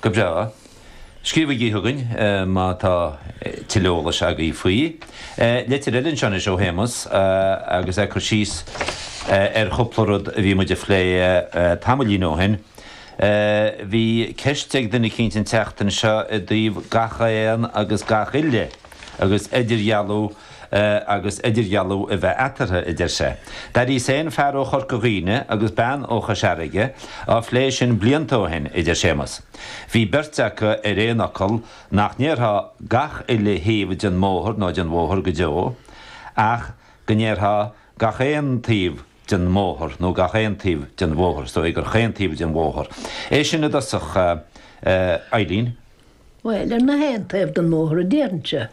Go breá. Scríobhaigí chugainn má tá tuilleadh eolais agaibh faoi. Litir eile anseo anois ó Shéamus agus é ag cur síos ar chúpla rud a bhí muid a phlé tamaillín ó shin. Bhí ceist ag duine eicínt an tseachtain seo i dtaobh gach aon agus gach uile agus idirdhealú, agus idirdhealú a bheith eatarthu, a deir sé. D'airigh sé féin fear ó Chorca Dhuibhne agus bean ó Chois Fharraige á phlé sin blianta ó shin, a deir Séamus. Bhí beirt acu ar aon fhocal nach ndéarfá gach uile thaobh den mbóthar nó den bhóthar go deo, ach go ndéarfá gach aon taobh den mbóthar nó gach aon taobh den bhóthar, is dóigh gur chaon taobh den bhóthar é sin i dtosach, a Eibhlín? Bhuel, ar na h-aon taobh den mbóthar a déarfainnse.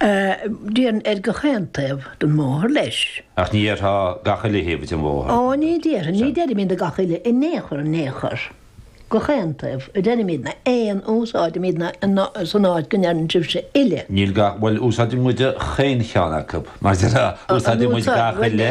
Déarfainn ar gach aon taobh den mbóthar leis. Ach ní dhéarfá gach uile thaobh den bhóthar. Ó, ní déarfainn, ní deirimidne gach uile, in aon chor, in aon chor. Gach aon taobh a deirimid, na aon, úsáidimid na, na, san áit go ndeireann sibhse uile. Níl gach, bhuel, úsáideann muid 'chaon cheann acu, mar a déarfá, úsáideann muid gach uile,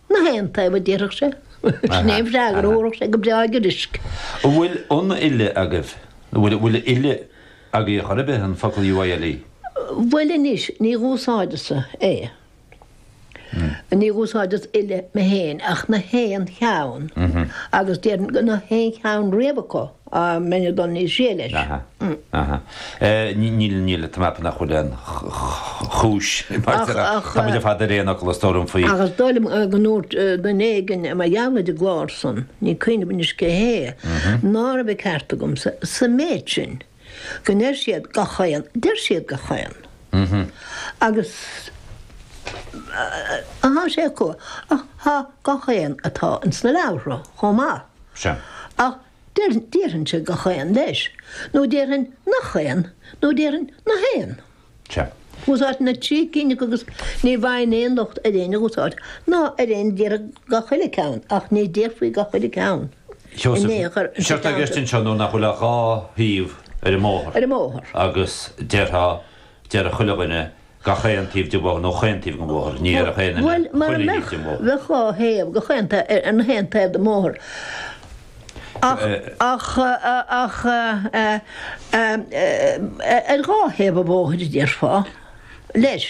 Na haon taobh a déarfadh sé. Sin é an freagra a thabharfadh sé go breá giorraisc. An bhfuil an uile agaibh? An bhfuil an uile agaibh chor ar bith, an focal UILE? Bhuel anois, ní dh'úsáideas-sa é. Ní dh'úsáideas uile mé fhéin ach na haon cheann, agus déarfainn go na haon cheann riamh acu. á mbeinn ag dul níos sia leis. Aha. Aha. Níl, níl, tá mé ag ceapadh nach bhfuil aon chúis, mar is eile, tá muid ar fad ar aon fhocal, is dóigh liom, faoi. Agus dóigh liom go ndúirt duine éigin mar gheall ar an gclár san, níl cuimhne agam anois cé hé, ná raibh an ceart agamsa, sa méid sin, go ndeir siad gach aon, deir siad gach aon. Agus, tá sé acu, ach tá gach aon atá ins na leabhartha chomh maith. Sea. Ach déarfainnse gach aon leis, nó déarfainn nach aon, nó déarfainn na haon. Sea. Úsáidfinn na trí cinn acu agus ní bhfaighinn aon locht ar aon úsáid, ná ar éinne a déarfadh gach uile ceann, ach ní déarfaí gach uile ceann. Seosamh, séard atá i gceist anseo nó nach bhfuil ach dhá thaobh ar an mbóthar, agus déarfá. Deir chuile dhuine gach aon taobh den bhóthar nó chaon taobh den bhóthar. Ní dhéarfadh aon duine Bhuel, mura chuile thaobh mbeadh, den bhóthar. bheadh dhá thaobh de chaon taobh ar na haon taobh den bhóthar. Ach, ach, ach, ar dhá thaobh an bhóthair a déarfá, leis.